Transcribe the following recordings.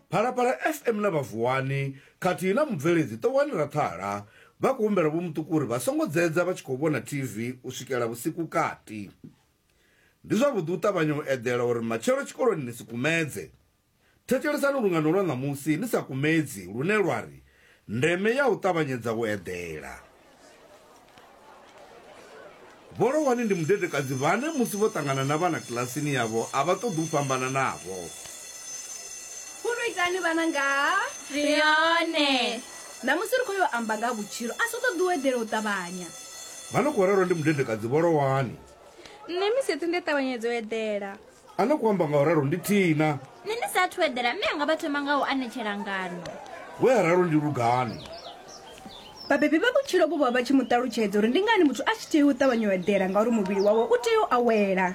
Phalaphala FM na vha Vuwani khathihi na mubveledzi Ṱowani Rathala vha khou humbela Vho Muṱuku uri vha songo dzedza vha tshi khou vhona TV u swikela vhusiku kati. Ndi zwavhuḓi u ṱavhanya u eḓela uri matshelo tshikoloni ni si kumedze. Thetshelesani lungano lwa ṋamusi ni sa kumedzi lune lwa ri, Ndeme ya u ṱavhanyedza u eḓela. Vho Lohwani ndi mudedekadzi vhane musi vho ṱangana na vhana kilasini yavho a vha ṱoḓi u fhambana navho. Khulu itani vhana nga ha. Sione. Ṋamusi ri khou yo amba nga ha vhutshilo, a si u ṱoḓi u eḓela u ṱavhanya. Vha no khou rerwa ndi mudedekadzi Vho Lohwani. Nṋe misi yoṱhe ndi a ṱavhanyedza u eḓela. a no khou amba nga u ralo ndi thina nṋe ndi sa athu eḓela mme anga vha thoma nga u anetshela ngano we a ralo ndi lugani vhabebi vha vhutshilo vho vha vha tshi mu ṱalutshedza uri ndi ngani muthu a tshi tea u ṱavhanya u eḓela ngauri muvhili wawe u tea u awela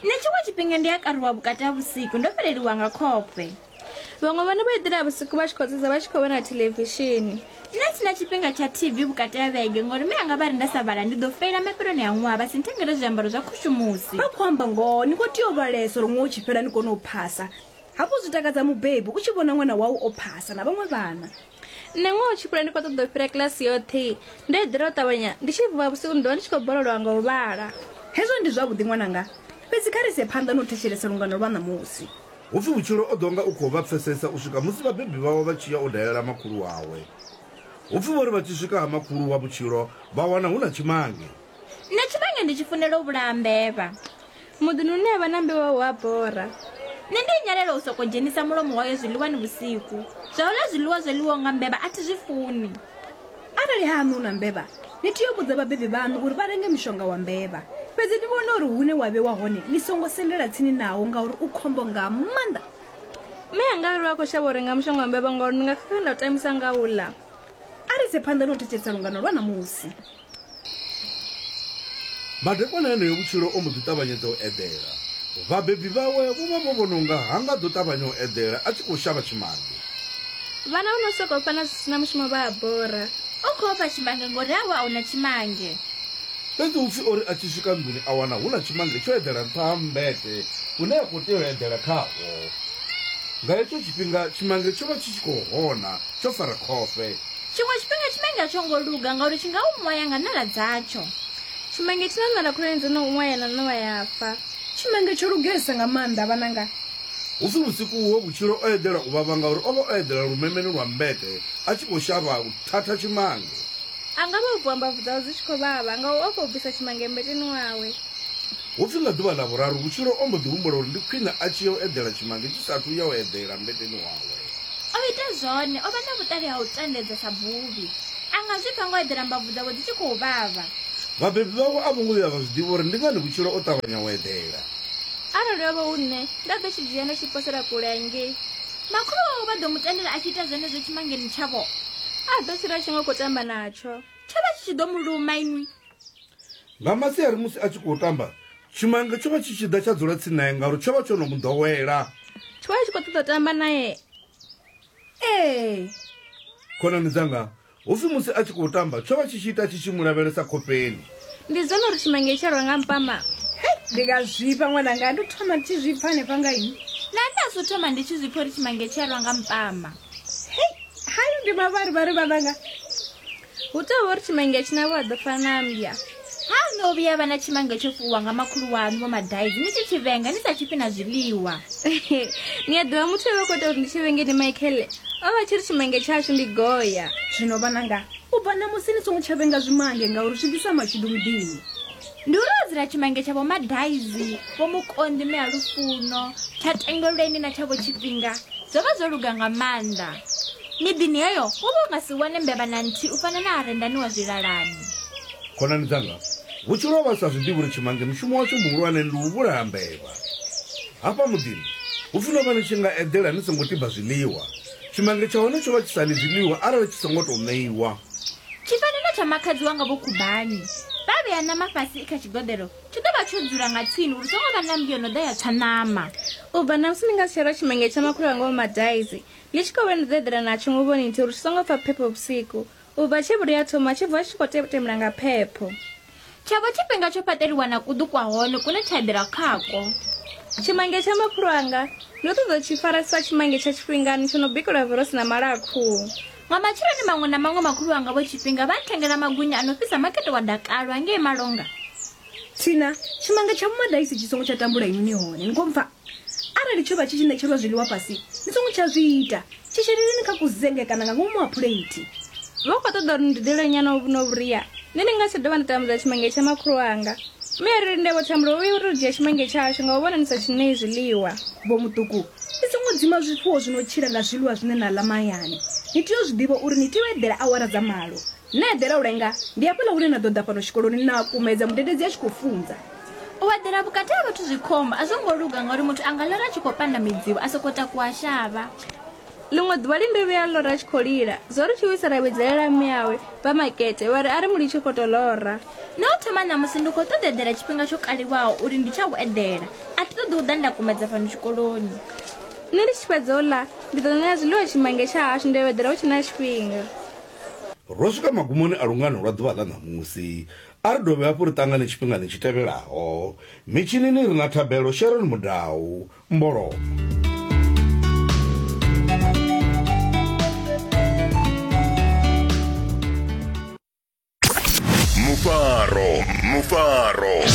nṋe tshiṅwe tshifhinga ndi a karuwa vhukati ha vhusiku ndo fheleliwa nga khofhe vhaṅwe vhone vha eḓela vhusiku vha tshi khou sedza vha tshi khou vhona thelevishini nṋe sina tshifhinga tsha tv vhukati ha vhege ngori mi anga vha ri nda sa vhala ndi ḓo feila mafheloni a ṅwaha vha si nthengele zwiambaro zwa khushumusi vha khou amba ngoho ni khou tea u vhalesa uri ṅwaha u tshi fhela ni kone u phasa hafhu zwi takadza mubebi u tshi vhona ṅwana wau o phasa na vhaṅwe vhana nṋe ngoho tshikule ndi khou ṱoḓa u fhira kilasi yoṱhe ndo eḓela u ṱavhanya ndi tshi vuwa vhusiku ndi ḓovha ndi tshi khou borolowa nga u vhala hezwo ndi zwavhuḓi ṅwananga fhedzi kha ri ise phanḓa na u thetshelesa lungano lwa ṋamusi Hu pfi vhutshilo o ḓo nga u khou vha pfesesa u swika musi vhabebi vhawe vha tshi ya u dalela makhulu wawe. Hu pfi vho ri vha tshi swika ha makhulu wa vhutshilo vha wana hu na tshimange. Nṋe tshivhanya ndi tshi funela u vhulaha mbevha. Muḓini une ha vha na mbevha hu a bora. Nṋe ndi nyalela u sokou dzhenisa mulomo wayo zwiḽiwani vhusiku. Zwa u ḽa zwiḽiwa zwo ḽiwaho nga mbevha a thi zwi funi. Arali hahaṋu hu na mbevha, ni tea u vhudza vhabebi vhaṋu uri vha renge mushonga wa mbevha. Fhedzi ni vhone uri hune wa vhewa hone ni songo sendela tsini nawo ngauri u khombo nga maanḓa. Mme anga a ri vha khou shavha u renga mushonga wa mbevha ngauri ndi nga khakha nda u tambisa nga u ḽa. A ri ise phanḓa na u thetshelesa lungano lwa ṋamusi. Madekwana eneo vhutshilo o mbo ḓi ṱavhanyedza u eḓela. Vhabebi vhawe vho vha vho vhona unga ha nga ḓo ṱavhanya u eḓela a tshi khou shavha tshimange. Vhana vho no sokou fana zwi si na mushumo vha a bora. U khou ofha tshimange ngori havho a hu na tshimange. Fhedzi hu pfi o ri a tshi swika nḓuni a wana hu na tshimange tsho eḓela nṱha ha mmbete une a khou tea u eḓela khawo. Nga hetsho tshifhinga tshimange tsho vha tshi tshi khou hona tsho fara khofhe. tshiṅwe tshifhinga tshimange a tsho ngo luga ngauri tshi nga u ṅwaya nga ṋala dzatsho tshimange tshi na ṋala khulwane dzo no ṅwaya na ṋowa ya fa tshimange tsho lugesa nga maanḓa vhananga hu si vhusiku huho vhutshilo o eḓela u vhavha ngauri o vha o eḓela lumemeni lwa mbete a tshi khou shavha u thatha tshimange a nga vha u bvuwa mbabvu dzawe dzi tshi khou vhavha nga u o khou bvisa tshimange mbeteni wawe hu pfi nga ḓuvha ḽa vhuraru vhutshilo o mbo ḓi humbula uri ndi khwine a tshi ya u eḓela tshimange tshi sathu ya u eḓela mbeteni wawe O ita zwone, o vha na vhuṱali ha u tandedza sa buvhi. A nga zwi pfa nga u eḓela mbabvu dzawe dzi tshi khou vhavha. Vhabebi vhawe a vho ngo vhuya vha zwi ḓivha uri ndi ngani vhutshilo o ṱavhanya u eḓela. Arali ho vha hu nṋe, nda ḓo tshi dzhia nda tshi posela kule hangei. Makhulu wawe vha ḓo mu tendela a tshi ita zwenezwo tshimangeni tshavho. A ḓo tshila a tshi nga u khou tamba natsho. Tsho vha tshi tshi ḓo mu luma inwi. Nga masiari musi a tshi khou tamba, tshimange tsho vha tshi tshi ḓa tsha dzula tsini nae ngauri tsho vha tsho no mu ḓowela. Tsho vha tshi khou ṱoḓa tamba nae. Ee. Khonani dzanga, hu pfi musi a tshi khou tamba, tsho vha tshi tshi ita tshi tshi mu lavhelesa khofheni. Ndi zwone uri tshimange tsho rwa nga mpama. Hei, ndi nga zwifha ṅwananga, ndo thoma ndi tshi zwifha hanefha nga ini. Na nṋe a zwo thoma ndi tshi zwifha uri tshimange tsho rwa nga mpama. Hei, hayo ndi mavharivhari vhananga. hu tou vha uri tshimange tshinavho a ḓo fana na mbya ha no vhuya vha na tshimange tsho fuwa nga makhulu wanu vho madaizi ni tshi tshi vhenga ni sa tshifhi na zwiḽiwa ni a ḓivha muthu avha khou ita uri ndi tshi vhenge ni michael o vha tshi ri tshimange tshashu ndi goya zwino vhananga u bva na musi ni songo tsha vhenga zwimange ngauri zwi ḓisa mashudu muḓini Ndi uri o dzila tshimange tsha vho Madaizi, vho Mukonḓi mme a Lufuno, tsha Tengelweni na tsha vho Tshifhinga zwo vha zwo luga nga maanḓa. Miḓini heyo wo vha u nga si wane mbevha na nthihi u fana na Arendani wa Zwilalani. Khonani dzanga, vhutshilo ho vha hu sa zwi ḓivhi uri tshimange mushumo watsho muhulwane ndi u vhulaha mbevha. Hafha muḓini hu pfi no vha ni tshi nga eḓela ni songo tiba zwiḽiwa Tshimange tsha hone tsho vha tshi sa ḽi zwiḽiwa arali tshi songo tou ṋeiwa. Tshifanelo tsha makhadzi wanga Vho Khubani. Vha vhea ṋama fhasi i kha tshigoḓelo, tshi ḓo vha tsho dzula nga tsini uri songo vha na mmbi yo no ḓa ya tswa ṋama. U bva ṋamusi ni nga si tsha lwa tshimange tsha makhulu wanga Vho Madaizi. Ni tshi khou vhuya ni ḓo eḓela natsho nguvhoni nthihi uri tshi songo pfa phepho vhusiku. U bva tshe vhuri a thoma, tshi bva tshi tshi khou tetemula nga phepho. Tsha vha tshifhinga tsho fhaṱeliwa na kuḓu kwa hone kune tsha eḓela khako. Tshimange tsha makhulu anga, ndo ṱoḓa u tshi fara sa tshimange tsha tshifhingani tsho no bikelwa vhurosi na mala a khuhu. Nga matsheloni maṅwe na maṅwe makhulu wanga vho tshifhinga vha nthengela magwinya a no fhisa makete wa dakalo hangei malonga. Thina, Tshimange tsha vhumadaisi tshi songo tsha tambula inwi ni hone, ni khou mpfa? Arali tsho vha tshi tshi ṋetshelwa zwiḽiwa fhasi, ni songo tsha zwi ita. Tshi sheleleni kha kuzenge kana nga ngomu ha phuleithi. Vha khou ṱoḓa uri ni dudele nyana uvhu na vhuria, nṋe ndi nga si tsha dovha nda tambudza tshimenge tsha makhulu wanga. Mme a ri linde vho Thambulo, vho vhuya u tou dzhia tshimenge tshashu nga u vhona ni sa tshi ṋei zwiḽiwa. Vho Muṱuku, ni songo dzima zwifuwo zwi no tshila nga zwiḽiwa zwine na ḽa mahayani. Ni tea u zwi ḓivha uri ni tea u eḓela awara dza malo. Na eḓela u lenga, ndi hafhaḽa hune na ḓo ḓa fhano tshikoloni na kumedza mudededzi a tshi khou funza. U eḓela vhukati ha vhathu zwi khombo, a zwo ngo luga ngauri muthu a nga lora a tshi khou panda midzimu, a sokou takuwa shavha. Ḽiṅwe ḓuvha Linde vhuya a lora a tshi khou lila. Zwo ri tshiwisa ra vhidzelela mme awe, vha Makete, vha ri a ri mu litshe u khou tou lora. Nṋe u thoma ṋamusi ndi khou ṱoḓa u eḓela tshifhinga tsho kaliwaho uri ndi tsha u eḓela. A thi ṱoḓi u ḓa nda kumedza fhano tshikoloni. Nṋe ndi tshi fhedza u ḽa, ndi ḓo ṋea zwiḽiwa tshimange tsha hashu nda yo eḓela hu tshe na tshifhinga. Ro swika magumoni a lungano lwa ḓuvha ḽa ṋamusi. A ri dovhe hafhu ri ṱangane tshifhingani tshi tevhelaho. Mitshinini ri na Thabelo Sharon Mudau. Mbolomo. Mufaro, Mufaro.